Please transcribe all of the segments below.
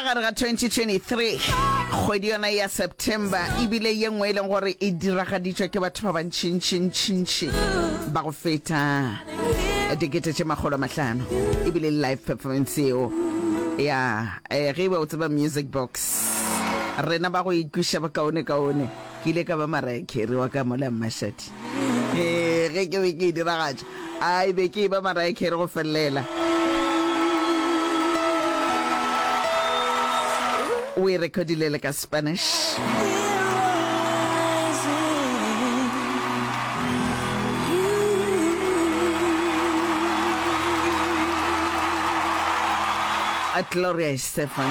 Ka gare ga 2023, kgwedi yona ya September e bile ye nngwe e leng gore e diragaditšwa ke batho ba bantšintšintšintši ba go feta dikete tše makgolo a mahlano e bile live performance eo ya eh, ge e ba o tseba music box rena ba go ikwiša bokaone kaone Ke ile ka ba Mariah Carey wa ka mola Mmashadi. Hee, ge ke be ke e diragatša, ai, be ke eba Mariah Carey go felelela. O e rekodile le ka Spanish. Gloria Stefan,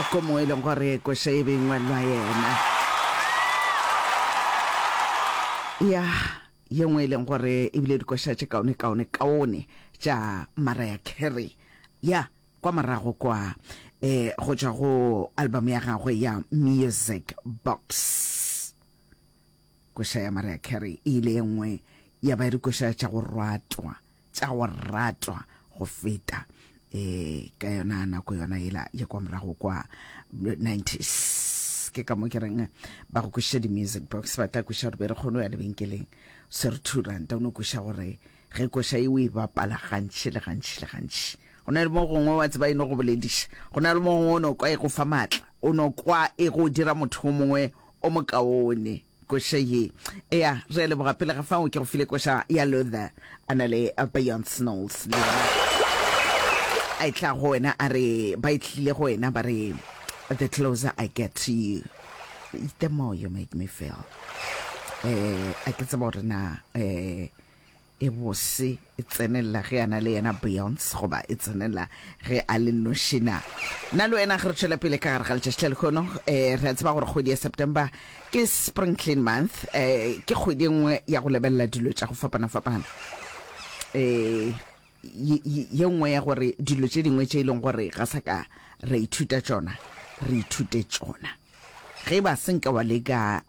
ko mo e leng gore koša e be e ngwalwa yena. Ya, ye nngwe e leng gore e bile dikoša tše kaone kaone kaone tša Mariah Carey. Ya, kwa morago kwa, e, go tšwa go album ya gagwe ya Music Box. Koša ya Mariah Carey e ile e nngwe ya ba dikoša tša go ratwa tša go ratwa go feta e ka yona nako yona ela ya kwa morago kwa 90s ke ka mo ke reng ba go koša di-music box ba tla koša gore be re kgone go ya lebenkeleng se re two ranta o ne koša gore ge koša e o e bapala gantši le gantši le gantši go na le mo gongwe wa tseba e no go bolediša go na le mo gongwe o ne kwa e go fa maatla o no kwa e go dira motho o mongwe o mokaone. Koša ye, eya, re a leboga. Pele ga fao, ke go file koša ya Luther, a na le Beyonce Knowles le yena. A e tla go wena, a re, ba e tlile go wena, ba re, The closer I get to you, the more you make me feel. Eh, a ke tseba gore na, eh, e bose e tsenelela ge a na le yena Beyonce goba e tsenelela ge a le noši na? Nna le wena ge re tšwela pele ka gare ga letšatši la lekhono, eh, re a tseba gore kgwedi ya September ke Spring Clean Month, eh, ke kgwedi e nngwe ya go lebelela dilo tša go fapana-fapana. Eh, ye- ye ye nngwe ya gore dilo tše dingwe tše e leng gore ga sa ka ra ithuta tšona, re ithute tšona. Ge e ba se nka wa leka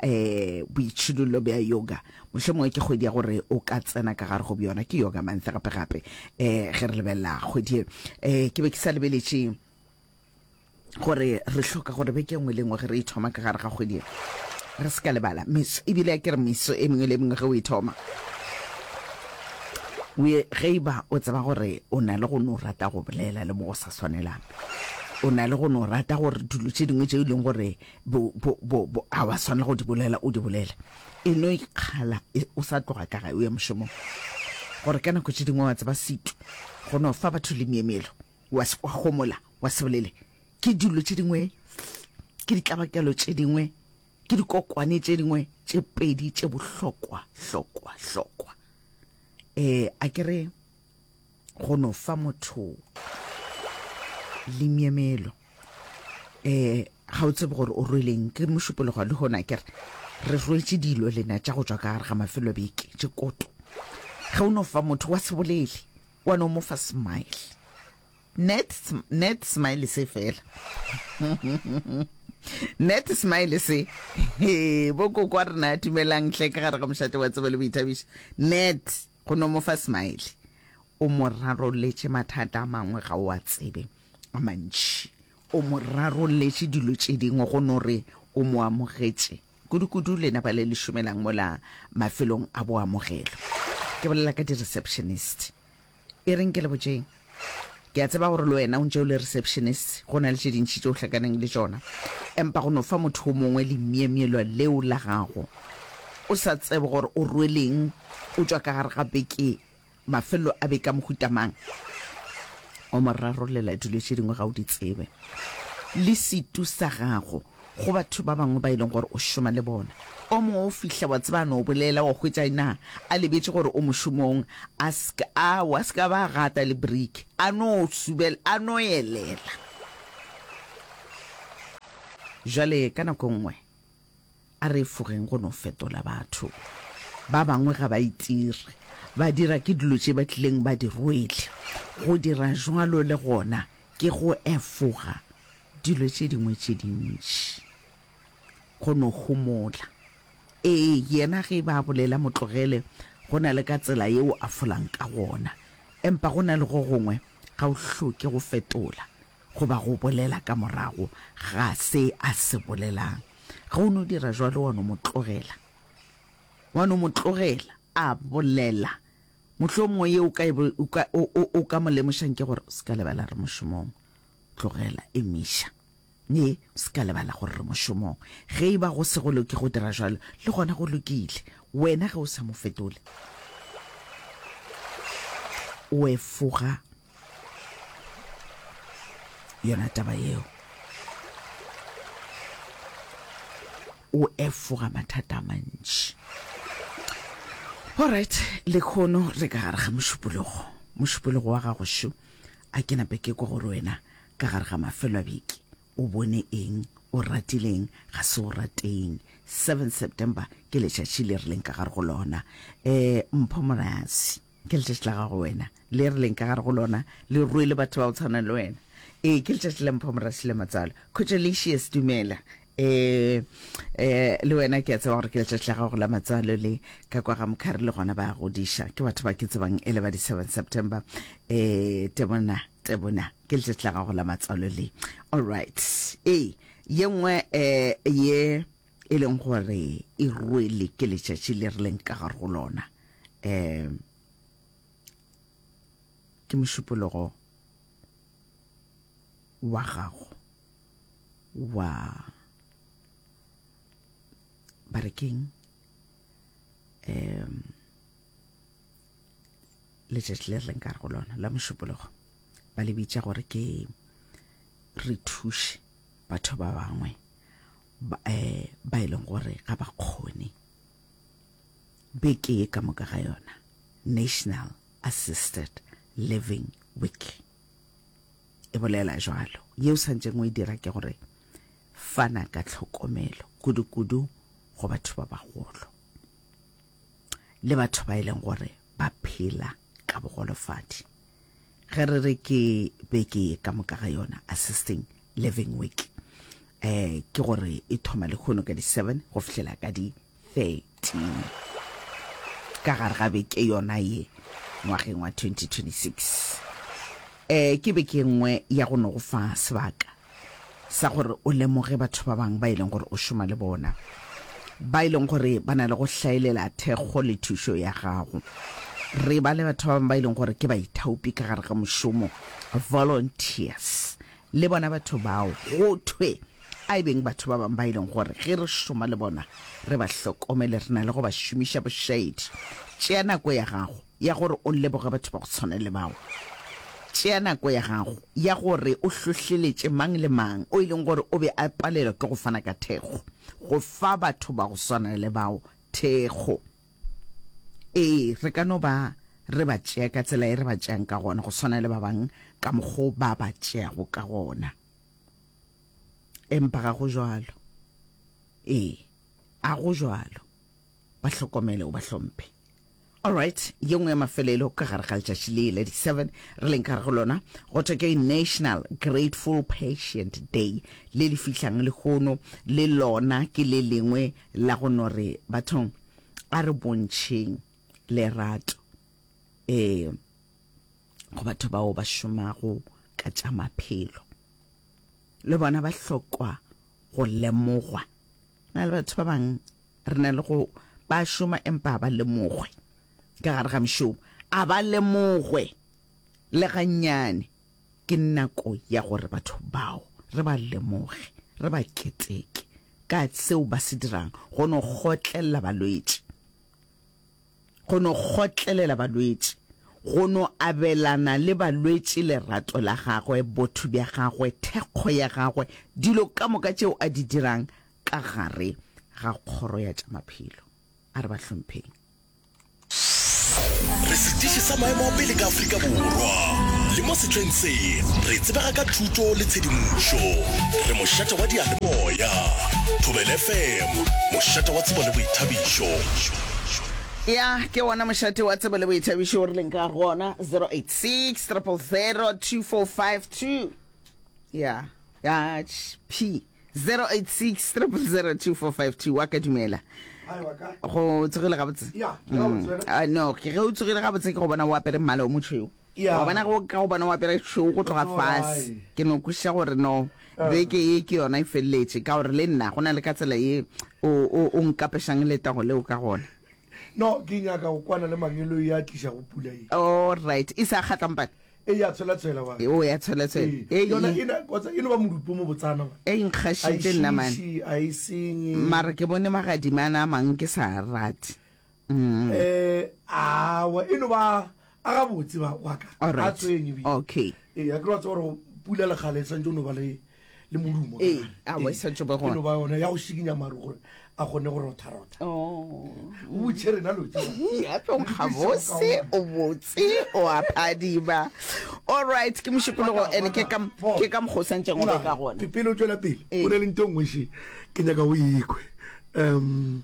boitšhidullo bja yoga, mohlomongwe ke kgwedi ya gore o ka tsena ka gare go bjona. Ke Yoga Month gape-gape ge re lebelela kgwedi e. Ke be ke sa lebeletše gore re hloka gore beke e nngwe le e nngwe ge re e thoma ka gare ga kgwedi e, re se ka lebala meso. Ebile a ke re meso e mengwe le e mengwe ge o e thoma, ge e ba o tseba gore o na le go no rata go bolela le mo go sa swanelang, O na le go no rata gore dilo tše dingwe tšeo e leng gore bo, bo, bo, bo, a wa swanela go di bolela, o di bolele. E no ikgala e, o sa tloga ka gae o ya mošomong. Gore ka nako tše dingwe wa tseba setu, go no fa batho le myemyelo, wa, wa homola, wa se bolele. Ke dilo tše dingwe, ke ditlabakelo tše dingwe, ke dikokwane tše dingwe tše pedi tše bohlokwa, hlokwa, hlokwa. Eh, a ke re. go no fa motho limyemelo eh ga o tsebe gore o rweleng ke mošupologo le gona kere re rwetse dilo lena tša go tswa ka gare ga mafelo beke tše koto ge o no fa motho wa sebolele wa no mo fa smile net net smile se fela net smile se bo kokwa rena tumelang tlhe ka gare ga mošate wa tsebo le boithabišo net Go no mo fa smile. O mo rarolletše mathata a mangwe ga o a tsebe, a mantši. O mo rarolletše dilo tše dingwe go no re o mo amogetše. Kudukudu lena ba le le šomelang mola mafelong a boamogelo. Ke bolela ka di-receptionist. E reng ke le botšeng? Ke a tseba gore le wena o ntše o le receptionist, go na le tše dintši tše o hlakaneng le tšona, empa go no fa motho wo mongwe lemyemyelwa leo la gago, o sa tsebe gore o rweleng, o tšwa ka gare ga beke, mafelelo a beke a mohuta mang, o mo rarolela dilo tše dingwe ga o di tsebe, le setu sa gago. go batho ba bangwe ba e leng gore o šoma le bona. O mongwe o fihla, wa tseba, a no bolela, wa hwetša ena a lebetše gore o mošomong, a ska a wa ska ba gata le brick, a no subel, a no elela. Jwale ka nako nngwe a re efogeng go no fetola batho ba bangwe ga ba itire, ba dira ke dilo tše ba tlileng ba di rwele. Go dira jwalo le gona Ke go efoga dilo tše dingwe tše dintši, go no homola. Ee, yena ge e ba a bolela mo tlogele, go na le ka tsela yeo a folang ka gona. Empa go na le go gongwe ga o hloke go fetola goba go bolela ka morago ga se a se bolelang. Ge o no dira jwalo, wa no mo tlogela. Wa no mo tlogela a bolela. Mohlomongwe ye o ka, o ka, o, o, o ka mo lemošang ke gore o se ka lebala re mošomong. Tlogela, emiša. Ee, o se ka lebala gore re mošomong. Ge e ba go se go loke go dira jalo, le gona go lokile. Wena ge o sa mo fetole, o efoga. yona taba yeo. O efoga mathata a mantši. Alright, lekhono re ka gare ga mošupologo. Mošupologo wa gago šo, a ke nape ke kwa gore wena ka gare ga mafelo a beke o bone eng, o ratileng, ga se o rateng. 7 September ke letšatši le rileng ka gare go lona. Um, Mpho Morasi. Ke letšatši la gago wena, le re leng ka gare go lona, le rwele batho ba go tshwana le wena. Ee, ke letšatši la Mpho Morasile Matswalo. Cojolicious, dumela. Eh, eh, le wena ke a tseba gore ke letšatši la gago la matswalo le ka kwa ga Mokhari le gona ba godiša. Ke batho ba ke tsebang ele ba di 7 September. Eh, Tebona, Tebona, ke letšatši la gago la matswalo le. All right. Ee, ye nngwe eh, ye e leng gore e rwele ke letšatši le re leng ka gare go lona um ke mošupologo wa gago wa barekeng um letšatši le re leng ka gare go lona la mošupologo ba le bitša gore ke re thuše batho ba bangwe ba, eh, ba e leng gore ga ba kgone beke e ka moka ga yona national assisted living week e bolela jalo yeo santšeng o e dira ke gore fana ka tlhokomelo kudu-kudu go batho ba bagolo le batho ba e leng gore ba phela ka bogolofadi Ge re re ke beke ye ka moka ga yona Assisting Living Week, eh, ke gore e thoma lekhono ka di 7 go fihlela ka di 13 ka gare ga beke yona ye ngwageng wa 2026. Eh, ke beke nngwe ya go no go fa sebaka sa gore o lemoge batho ba bangwe ba e leng gore o šoma le bona ba e leng gore ba na le go hlaelela thekgo le thušo ya gago re ba le batho ba bangwe ba e leng gore ke baithaopi ka gare ga mošomo volunteers le bona batho bao go thwe a e beng batho ba bangwe ba e leng gore ge re šoma le bona re ba hlokomele re na le go ba šomiša bošaedi tšea nako ya gago ya gore o leboge batho ba go tshwana le bao. Tšea nako ya gago ya gore o hlohleletše mang le mang o e leng gore o be a palelwa ke go fana ka thekgo, go fa batho ba go swana le bao thekgo. Ee, re ka no ba re ba tšea ka tsela e re ba tšeang ka gona, go swana le ba bangwe ka mokgwa o ba ba tšeago ka gona. Empa ga go bjalo. Ee, a go bjalo. ba hlokomele o ba hlomphe. Alright, ye nngwe ya mafelelo ka gare ga letšatši le la di 7 re leng ka gare go lona go thwe ke National Grateful Patient Day le le fihlang lehono le lona ke le lengwe la go no re bathong a re bontšheng lerato eh go batho bao ba šomago ka tša maphelo le bona ba hlokwa go lemogwa. Na le batho ba bang re na le go ba šoma empa a ba lemogwe ka gare ga mšomo, a ba lemogwe le gannyane. Ke nako ya gore batho bao re ba lemoge, re ba keteke ka seo ba se dirang go no kgotlelela balwetši. go no kgotlelela balwetši, go no abelana le balwetši lerato la gagwe, botho bja gagwe, thekgo ya gagwe, dilo ka moka tšeo a di dirang ka gare ga kgoro ya tša maphelo. A re ba hlompheng. Re setiši sa maemo a pele ka Afrika Borwa, le mo sehleng se re tsebega ka thuto le tshedimošo. Re mošate wa diyalemoya, Thobela FM, mošate wa tsebo le boithabišo. ya ke wona mošate wa tsebo le boithabišo o rileng ka gona 086 2452 ya ya p 086 wa ka dumela go tsogile gabotse mm. ah, no ke ge o tsogile gabotse ke go bona o apere mmala o motšhweu Wa bona, ge o ka go bona o apere tšhweu go tloga fase, ke no kwešiša gore no, beke ye ke yona e feleletše, ka gore le nna go na le ka tsela ye o, o, o nkapešang letago leo ka gona. No, ke nyaka go kwana le Mangelo yo a tlišago pula ye. All right. E se a kgatla, mpane? E, ya tshwelatshwela, wa. E, o ya tshwelatshwela. Ee. Ei, Yona e na, kgotsa e no ba modupo mo botsana, man. Ei, nkgašitše nna, man. A e šiši, a e senye. Mara ke bone magadima a na a mang ke sa a rate. um awa e no ba a gabotse waka a tsweng ebile okay ee a ke ra tsa gore pula le kgale santse o no ba le le modumo ee a wa sa tsobe go no ba yona ya go shikinya maru gore a gone go rotha rotha oh u tshe rena lo tsa ya pe o gabose o botse o a phadiba all right ke moshipolo go ene ke ka ke ka go santse go ka gone pele o tswela pele o le ntong ngwe shi ke nyaka o ikwe um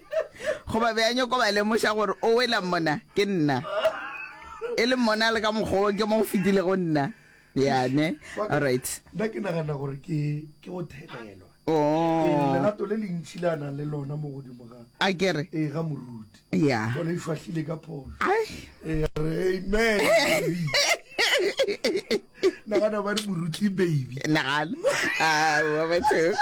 goba be a nyoko ba lemoša gore o wela mona ke nna e le mona le ka mokgwa ke mo go fetile go nna yane alright nna ke nagana gore ke ke go thelelwa oh. ee, lerato le lentšhi le a nang le lona mo godimo ga a kere ee ga moruti ya gone e šwahlile ka pholo ee re amen nagana ba re moruti baby nagana aowa batho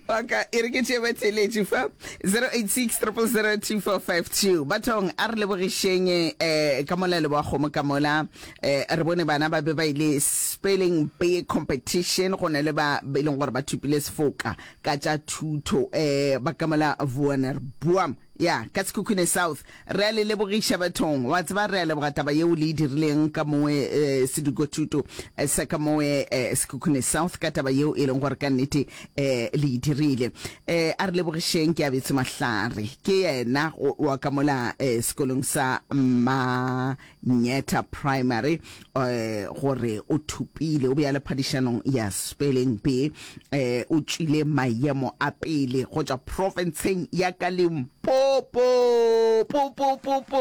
oka e re ke tšee batheeletši fa 086 bathong a re lebogišeng um ka mola leboa kgomo ka mola um re bone bana ba be ba ile spelling bee competition go na le ba e leng gore ba thupile sefoka ka tša thuto um ba ka mola vuaner buam Ya, ka Sekhukhune South. Re a le lebogiša bathong. Wa tseba, re a leboga taba yeo le e dirileng ka mowe eh, sedikothuto eh, sa ka mowe eh, Sekhukhune South, ka taba yeo e leng gore ka nnete eh, le e dirile. Eh, a re lebogišeng ke abetse mahlare. Ke yena go- wa ka mola eh, sekolong sa ma Mnyetha Primary gore o thopile, o be a le phadišanong ya Spelling Bee. O tšwile mayemo a pele go tšwa profenseng ya ka Limpopo. Popopopo!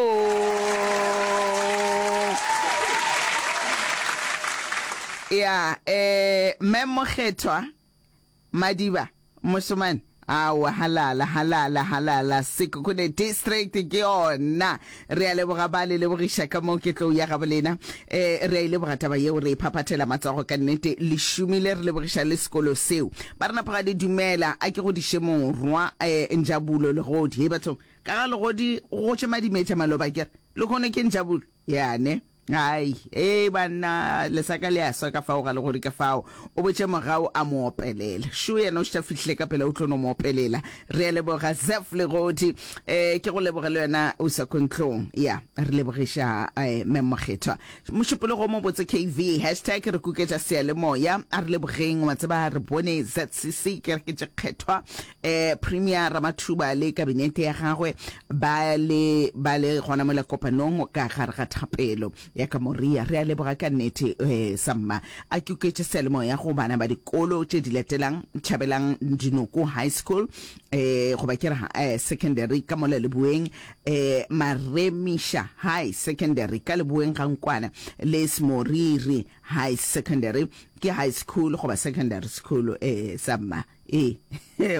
Ya, Mme Mokgethwa. Madiba, Mošemane, Aowa, halala, halala, halala, Sekhukhune District ke yona. Re a leboga ba le lebogiša ka moo ke tlou ya gabolena. E, re a e leboga taba yeo, re e phaphathela matsogo ka nnete. Le šomile, re lebogiša le sekolo seo. Ba re napa ga le dumela, a ke godiše morwa, e, Njabulo Legodi. Hei bathong, ka ga Legodi go gotše madimetša maloba, ke re, lehono ke Njabulo, yane. Ai, ee banna, lesaka le a swa ka fao ga le gori ka fao. O botše mogau a mo opelela. Shu yena o štha fihle ka pela o tlo no mo opelela. Re a leboga Zeph Legodi. E, ke go leboge le wena o sa kontlong. Ya, re lebogiša e, Mme Mokgethwa. Mošupologo o mobotse KV, hashtag re kuketša seyalemoya. A re lebogeng, wa tseba re bone ZCC, kereke tše kgethwa. Premier Ramathuba le kabinete ya gagwe ba le ba le gona mola kopanong ka gare ga thapelo ya ka moria. Re a leboga ka nnete Samma. A ke oketše seyalemoya go bana ba dikolo tše di latelang, Tšhabelang Dinoko High School, goba ke re secondary ka mola leboeng, Maremisha High Secondary ka leboeng ga nkwana, le Smoriri High Secondary ke high school goba secondary school Samma. e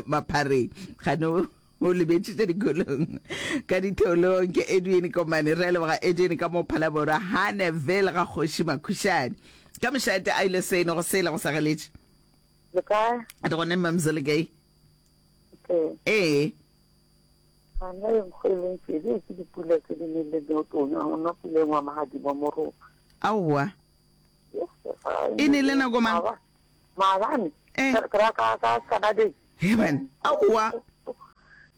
maphareng gane o lebetšitše dikolong ka ditheolong ke edwin komane re leboga edwin ka mo phalaborwa haneville ga kgoši makhušane ka mošate a ile seno go sele go sa galetše le kae re gone mamzo le kae ee gana e nkgo e leng pele ke dipula tse di neng le neotone go nna pula engwe magadimo moropa aowa e ne le nako mang Maabane, Eh. ka ka ka ka Saturday Heaven. Aowa.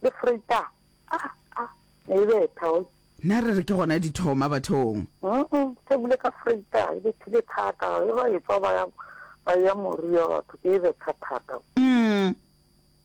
le Freita. Ah ah, ne e betha o. Na re re ke gona di thoma bathong. Mm se bile ka Freita e bethile thata e ba e tswa ba ya ba ya moria batho ke e betha thata. Mm.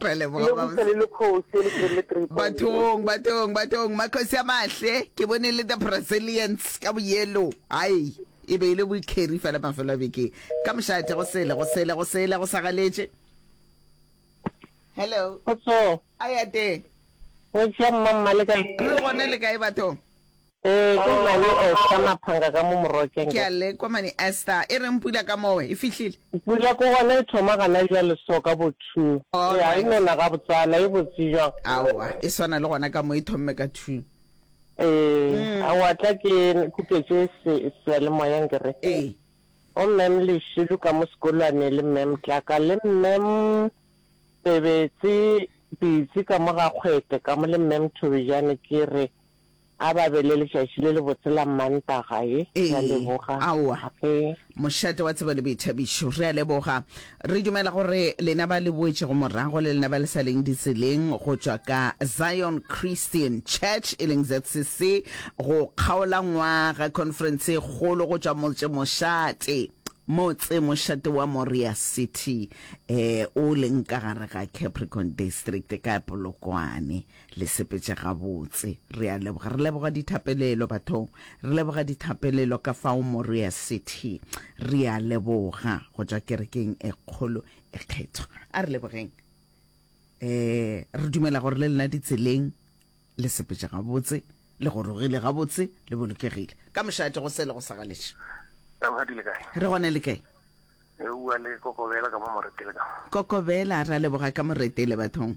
Re leboga Lebogiša babs. le lekgosi e le teng le three point bathong bathong bathong makgosi a mahle ke bone le the brazilians ka boyelo ai e be e le boikeri fela mafelo a bekeng ka mošate go sele go sele go sele go sagaletše hello Kgotso, a ya teng go tšea mmammale kae? le gona le kae bathong Ee, ke nna yo Esther Maphanga ka mo Morokeng Ke ke. a lekwa mane Esther. E reng pula ka mowe? E fihlile? Pula ko gona e thoma gana bjale so ka bo two. All Ee, a e right. nona gabotsana, e botse bjang. Aowa, e swana le gona ka mo e thomme ka two. Ee, a wa tla ke khupetše se, seyalemoyeng ke re. Ee. Go Ma'am Lešilo ka mo sekolwane le Ma'am Tlaka le Ma'am Pebetse Pitsi ka mo ga Kgwete ka mo le Ma'am Thobejane ke re. A ba be le letšatši le lebotse la Mmantaga ye. Re a Ee, leboga. aowa. Ape. Mošate wa tsebo le boithabišo. Re a leboga. Re dumela gore lena ba le boetšego morago le lena ba le sa leng ditseleng go tšwa ka Zion Christian Church e leng ZCC go kgaola ngwaga conference e kgolo go tšwa motse mošate motse mošate wa Moria City eh o leng ka gare ga Capricorn District ka Polokwane. Le sepetše gabotse. Re a leboga. Re leboga dithapelelo, bathong. Re leboga dithapelelo ka fao Morea City. Re a leboga go tšwa kerekeng e kgolo e kgethwa. A re lebogeng. E, re dumela gore le lena ditseleng le sepetše gabotse, le gorogile gabotse, le bolokegile. Ka mošate go se le go sa galetše. Rakgadi le kae? Re gona le kae? E bua le Kokobela ka mo Moretele ka mo. Kokobela, re a leboga ka Moretele, bathong.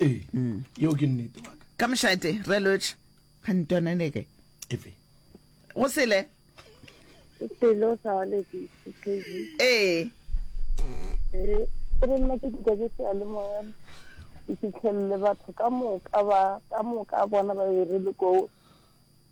ee mm. yeo ke nnete waka ka mošate re lotšhe gantonaneke efe go sele selo sa waledi ee ee ke re nna ke dika ke se le moya ke fitlhelele batho ka moka ba ka moka bona ba e re le koo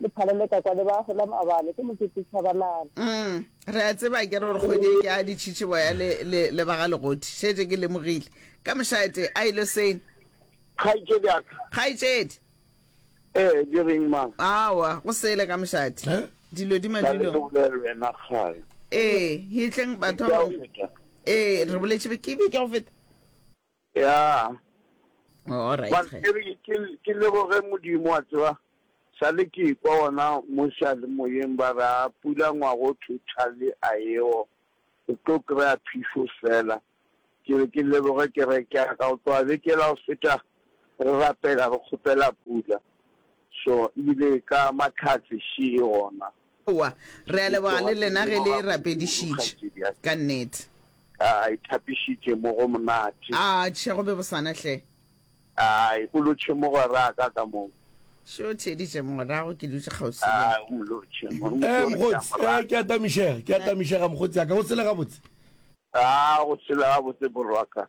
Le phale le ka kwa le ba hola mabale ke mokete Chabalala. Umm re a tseba akere gore kgwedi e ke a ditšhitše boya le, le, le ba ga legoti. Šetše ke lemogile. Ka mošate, a e lo seng? Kgaitšedi ya ka. Kgaitšedi. Ee, di reng ma? Aowa, go sele ka mošate. He? Dilo di Ka le madulong. bolele wena kgale. Ee, hitleng batho Beke ba ya go bangwe. feta. Ee, re boletše be, ke beke ya go feta. ya ke leboge modimo wa tseba sa le ke kwa ona mo sealemoyeng ba re a pula ngwago thotale a eo o tlo kry-a phišo fela ke re ke leboge ke re ke ka go tloga bekela go feta re rapela re kgopela pula so ebile ka matlhatse še e gona Aowa, re a leboga le lena ge le rapedišitše, ka nnete. A e thapišitše mo go monate. Atšhe, go be go sana hle. A e bolotše mogweraka ka mo. Še o theeditše morago, ke dutše kgauswi le. A o mo lotše. Ee, mokgotsi, ee, ke a tamišega, ke a tamišega, mokgotsi ya ka. Go tshela gabotse? A go tshela gabotse, morwaka.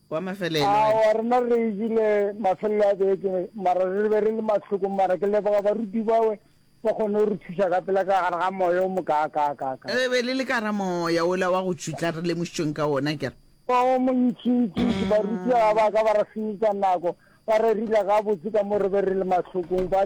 wa mafelelo wena. Aowa, rena re e jele mafelelo a beke, mara re be re le mahlokong. Mara ke leboga baruti bawe, ba kgonne go re thuša ka pela ka gare ga moya o mokaakaakaaka. Re be le le ka gare ga moya wola wa go tšutla re lemošitšweng ka wona, ke re. O montšintšintši. Baruti ga ba ka ba re senyetša nako, ba re rila gabotse ka mo re be re le mahlokong, ba.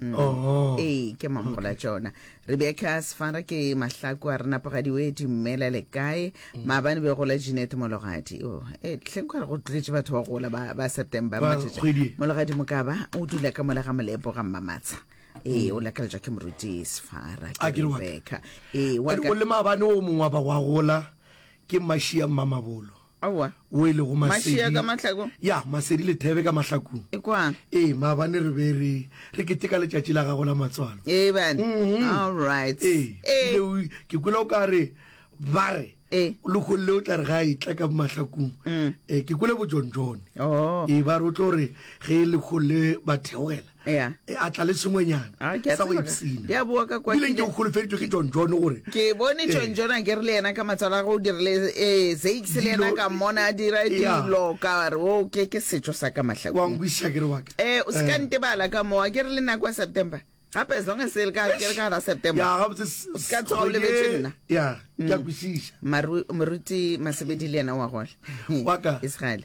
Mm. Oh. ee ke mampola tšona rebecca sefara ke mahlaku a re napagadi o e dumela le kae mm. maabane be gola jeanette mologadi o e tlheng ka re go tlogetše batho ba gola ba ba september Ba- matšatši. kgwedi e. mologadi mokaba o dula ka mola ga molepo ga mmamatsha ee o lakaletšwa ke moruti sefara Mm. A ke re wa ka. rebecca ee wa Wa ka- o le maabane o mongwe wa ba wa gola ke mashia mmamabolo Aowa. wo e lego Masedi. Mašia ka mahlaku? Ya, Masedi le Thebe ka mahlakung. E kwa? Ee, maabane re be re, re keteka letšatši la gago la matswalo. Ee, bane? Mhm. All right. Ee, Ee. ebile o- ke kwele o ka re, ba re, Ee. Lekgolle o tla re ga a etla ka mahlakung. Mm. Ee, ke kwele bojonjone. Oh. Ee, ba re o tlo re ge Lekgolle ba theogela, ya e a tla le sengwenyana Ah, ke a sa go tseba ka- ipsina ke a boa ka kwa ebile ke nke ne- o kgolofeditšwe ke john john gore ke bone Eh. john john a ke re le yena ka matswalo a go o dirile um zakes le yena Dilo- ka mmona a dira Ya. dilo ka re o ke ke setšo sa ka wa mahlakong nkwišiša ke re waka um o se ka ntebala ka moo a ke re le nako ya september gape as long as e le ka ke re ka gara september ya gabotse s- O se ka tsoga o kgwedi lebetse e- nna. ya ke a kwešiša Maru- moruti masebedi le yena wa gole Wa ka. israele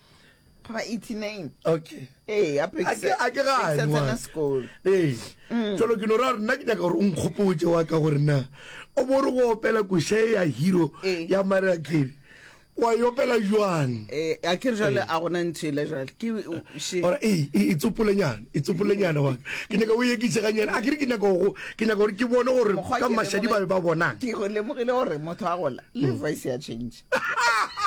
ba 89 okay ee a ke a ke ga a tsena sekolo ee mm. jalo ke no ra nna ke nyaka gore o nkgopotse wa ka gore na o bo re go opela koshe ya hero ee. ya maria kere wa yopela jwang eh a ke jale a gona ntshile jale ke she ora e e tsopolenyana e tsopolenyana wa ke ne ka o yekise ga nyana a ke re ke nyaka go ke nyaka gore ke bone gore ka mashadi ba ba bona ke go lemogile gore motho a gola le mm. voice ya change